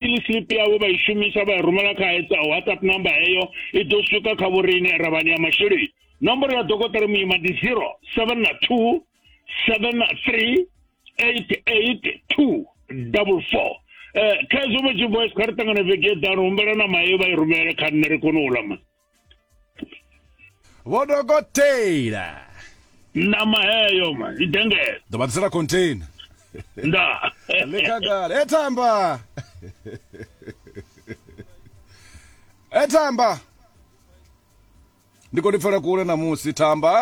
ili slip yavho vha i shumisa vha i rumela kha hetsa whatsapp number heyo i ḓo swika kha vhoriine ravhani ya masheleni nomboro ya dokotela muima ndi 072 73 882 double four um khezwo vha tshi voice kha ri ṱangane vhege eḓano humbela na maye vha i rumele kha nṋe ri kone u lama vho dokotela ṋama heyo ma i dengela ḓo vha ḓisela container nda le khagala e thamba e thamba ndi khou ḓi pfela kule ṋamusi thamba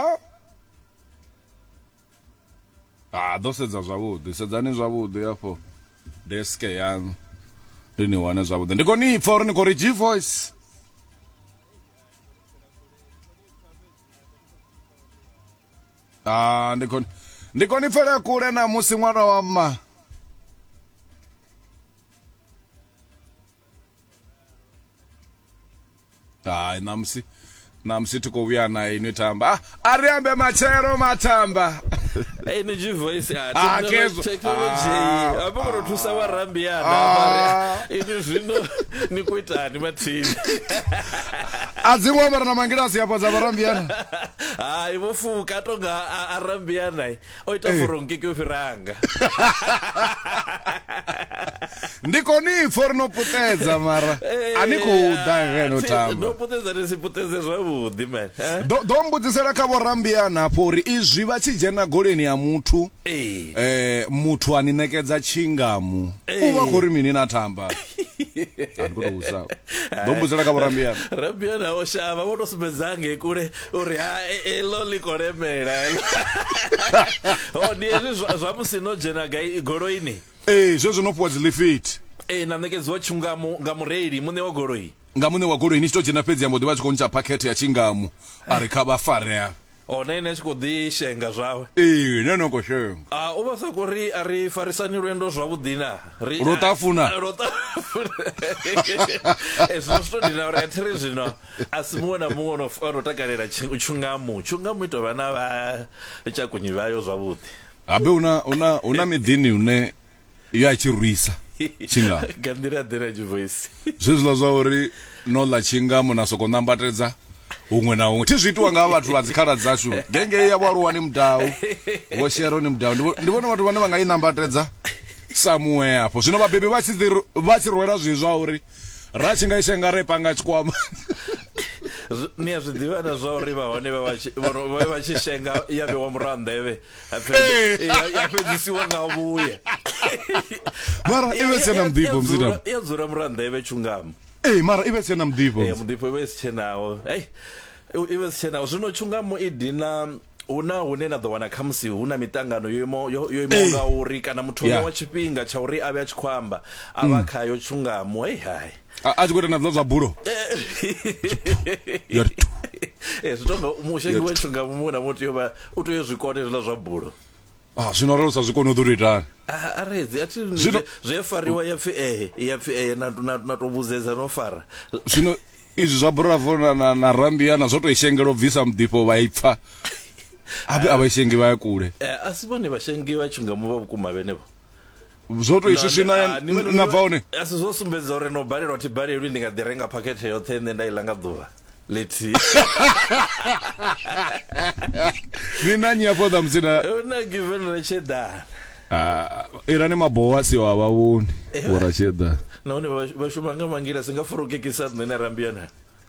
ha ḓo sedza zwavhuḓi sedzani zwavhuḓi afho desk yaṋu ri ni wane zwavhuḓi ndi khou ni pfa uri ni khou ri g voice ah ndi khou ndi khou ni pfela kule na musi ṅwana wa mma hayi ṋamusi ṋamusi thi khou vhuya na inwi tamba ah, a ri ambe matshelo matamba energy voice ya ah, technology ah, apo kono thusa wa rambiana ah. ini zwino ni ku itani mathini a dzi ngwa mara na mangilasi ya fhadza vharambiana hayi vho fuka tonga a rambiana o ita eh. furungi ke u fhiranga ndi koni pfo ri no putedza mara eh, a ni khou ḓa ngeno tamba putedza ni si putedze zwavhuḓi man eh? ḓo mbudzisela kha vhorambiana hafho uri izwi vha tshi dzhena goleni ya muthu eh muthu a ni ṋekedza tshingamu u vha khou ri mini na tamba andikutouzao ndo mbudzela ka vho rambiana rambiana o shavha vho to sumbedzange kule uri ha e, e, elo ḽi khou lemela o oh, ndi hezwi zwa musi no dzhena gai goloini ee zwezwo no fhiwa dzi lifiti ee na ṋekedziwa tshungamu nga mureili muṋe wa goloi nga muṋe wa goloi ni tshi to dzhena fhedzi ya mbo ḓi vha tshi khou ntsha phakhethe ya tshingamu a ri kha vha farea o oh, na ine a tshi khou ḓi shenga zwawe ee na no khou shenga a ah, u vha sa khou ri a ri farisani lwendo zwavhuḓi na ri lwo tafuna lwo tafuna ezwi eh, zwi to dina uri a thi ri zwino a si muṅwe na muṅwe ono ono takalela tshi- tshungamu tshungamu i tou vha na vha tshakunyi vhayo zwavhuḓi habe una una una miḓini une yo a tshi rwisa tshinga nga nḓila ḓe na tshivoisi zwezwiḽa zwa uri no ḽa tshingamo na soko nambatedza huṅwe na huṅwe thi zwi itiwa nga vhathu vha dzikhala dzashu gengei ya vhoaluwa ni mudau vho shero ni mudau Ndi vho- ndi vhona vhathu vhane vha nga i nambatedza samuwe afho zwino vhabebi vha tshi dzi ru- vha tshi rwela zwi zwa uri ra tshi nga ishe nga re panga tshikwama ni a zwi ḓivha na zwa uri vhahone vhe vha tshi shenga ya vhewa muraha nḓevhe ya fhedzisiwa nga vhuya mara i vhe tsena muḓifho mzina ya dzula muraha nḓevhe tshungamo ee mara i vhe tsena muḓifho muḓifho i vhe si tshenaho ei i vhe si tshenaho zwino tshungamo i dina hu na hune na ḓo wana khamusi hu na miṱangano yo imaho yo yo imaho nga uri kana muthu yeah. wa tshifhinga tsha uri a vhe a tshi khou amba a vha mm. khayo tshungamo hei hai a tshi khou ita na zwa zwa bulo zwi tonga mushengi wa tshungamo muṅwe na muthu yo vha u tea u zwi kone zwiḽa zwa bulo ah zwino ralo sa zwi kone u ḓo itani a redzi a thi zwi fariwa ya pfi eh ya pfi eh na na na to vhuzedza no fara zwino izwi zwa bravo na na, na rambia na zwo to ishengela u bvisa mudifho vha ipfa abe abashengi vha ya kule eh, a si vhone vhashengi vha tshi nga mu vha vhukuma vhenevho zwo to iswi swina ah, na bva hone a si zwo sumbedza uri no balelwa thi balelwi ndi nga ḓi renga phakhethe yoṱhe nṋe nda iḽa nga ḓuvha lethihi ni na nyi afho ḓa musina una given retshedana ah, irani mabowa si wa vha vhoni vho ratshedana nahone vha shuma nga mangila si nga furukekisa nṋe na rambiyanani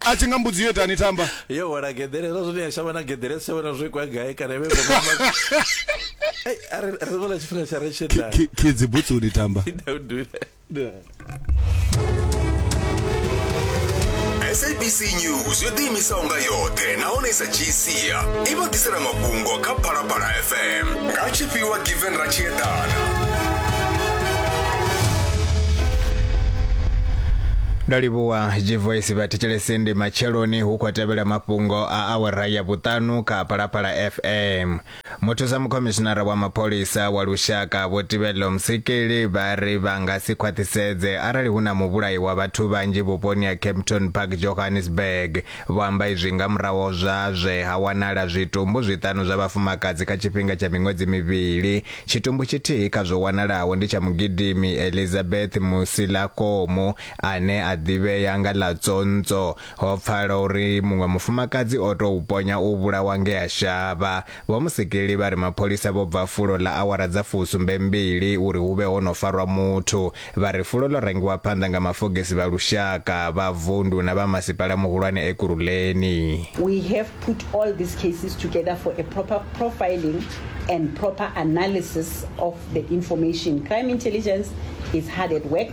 a tshi nga mbudzi yo itani thamba yo wela geḓelelo zwine ya shavha na geḓele si tshavha na zwo ikwa gai kana vhe ri vhona tshifhinga tsha ri tshedza kidzi butsuni tamba sabc news yo ḓiimisaho nga yoṱhe nahone i sa dzhii sia i vha ḓisela mafhungo kha phalaphala fm nga tshifhiwa given ra tshi eḓana Dali Boa. G-Voice vha thetshelese ndi matsheloni hu khou tevhela mafhungo a awara ya vhuṱanu kha Phalaphala FM. Muthusa mukhomishinara wa mapholisa wa lushaka Vho Tibello Msikili vha ri vha nga si khwaṱhisedze arali hu na muvhulayi wa vhathu vhanzhi vhuponi ha Kempton Park Johannesburg. Vho amba izwi nga muraho zwa zwe ha wanala zwitumbu zwiṱanu zwa vhafumakadzi kha tshifhinga tsha miṅwedzi mivhili. Tshitumbu tshithihi kha zwo wanalaho ndi tsha mugidimi Elizabeth Musilakomu ane a ḓivhea nga ḽa Tsonts'o, ho pfala uri muṅwe mufumakadzi o tou ponya u vhulawa ngea shavha. Vho Musikili vha ri mapholisa vho bva fulo ḽa awara dza fusumbe mbili uri hu vhe ho no farwa muthu. Vha ri fulo ḽo rangiwa phanḓa nga mafogisi vha lushaka, vha vundu na vha masipala muhulwane Ekurhuleni. We have put all these cases together for a proper profiling and proper analysis of the information. Crime Intelligence is hard at work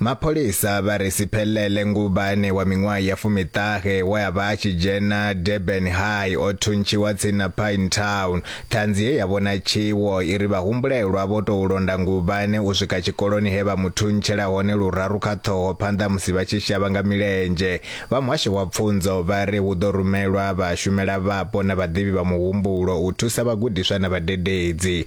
Mapholisa vha ri Siphelele Ngubane wa miṅwaha ya fumiṱahe we a vha a tshi dzhena Durban High o thuntshiwa tsini na Pine Town. Ṱhanzi ye ya vhona tshiwo i ri vhahumbulelwa vho tou londa Ngubane u swika tshikoloni he vha mu thuntshela hone luraru kha ṱhoho phanḓa musi vha tshi shavha nga milenzhe. Vha muhasho wa pfunzo vha ri hu ḓo rumelwa vhashumelavhapo na vhaḓivhi vha muhumbulo u thusa vhagudiswa na vhadededzi.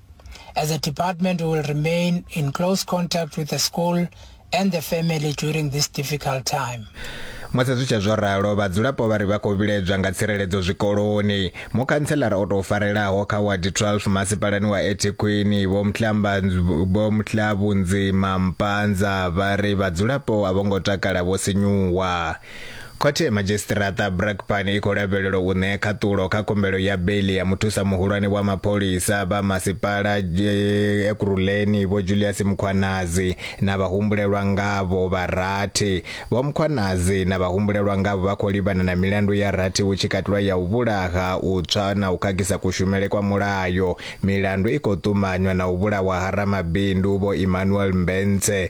As a department, we will remain in close contact with the school and the family during this difficult time. musi zwi tshe zwo ralo vhadzulapo vha ri vha khou vhiledzwa nga tsireledzo zwikoloni mukhantselara o tou farelaho kha wadi 12 masipalani wa ethekwini vhomhlabunzima mpanza vha ri vhadzulapo a vho ngo takala vho sinyuwa Khothe ya Madzhisiṱiraṱa Brakpan i khou lavhelelwa u ṋea khaṱulo kha khumbelo ya beiḽi ya muthusa muhulwane wa mapholisa vha masipala eh, Ekurhuleni Vho Julius Mukhwanazi na vhahumbulelwa ngavho vha rathi. Vho Mukhwanazi na vhahumbulelwa ngavho vha khou livhana na milandu ya rathi hu tshi katelwa ya u vhulaha, u tswa na u khakhisa kushumele kwa mulayo. Milandu i khou ṱumanywa na u vhulawa ha ramabindu Vho Emmanuel Mbentse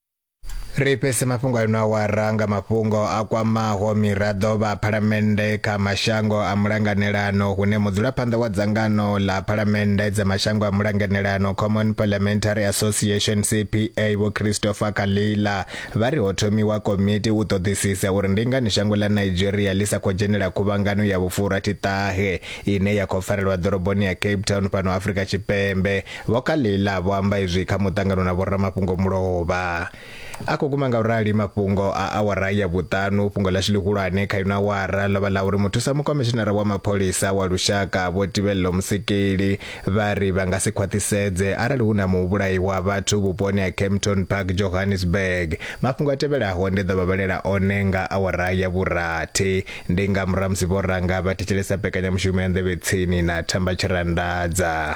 Ri fhese mafhungo a ino awara nga mafhungo a kwamaho miraḓo vha Phalamennde kha mashango a mulanganelano hune mudzulaphanḓa wa dzangano ḽa Phalamennde dza mashango a mulanganelano Common Parliamentary Association CPA Vho Christopher Kalila vha ri ho thomiwa komiti u ṱoḓisisa uri ndi ngani shango ḽa Nigeria ḽi sa khou dzhenela khuvhangano ya vhufurathi ṱahe ine ya khou farelwa ḓoroboni ya Cape Town fhano Afrika Tshipembe Vho Kalila vho amba izwi kha muṱangano na vhoramafhungo mulovha. A khou guma nga u rali mafhungo a awara ya vhuṱanu. Fhungo ḽashu ḽihulwane kha ino awara ḽo vha ḽa uri muthusa mukomishinara wa mapholisa wa lushaka Vho Tibello Musekeli vha ri vha nga si khwaṱhisedze arali hu na muvhulahi wa vhathu vhuponi ha Kempton Park, Johannesburg. Mafhungo a tevhelaho ndi ḓo vha vhalela one nga awara ya vhurathi. Ndi nga murahu ha musi vho ranga vha thetshelesa mbekanyamushumo ya Nḓevhe Tsini na Thamba Tshirandadza.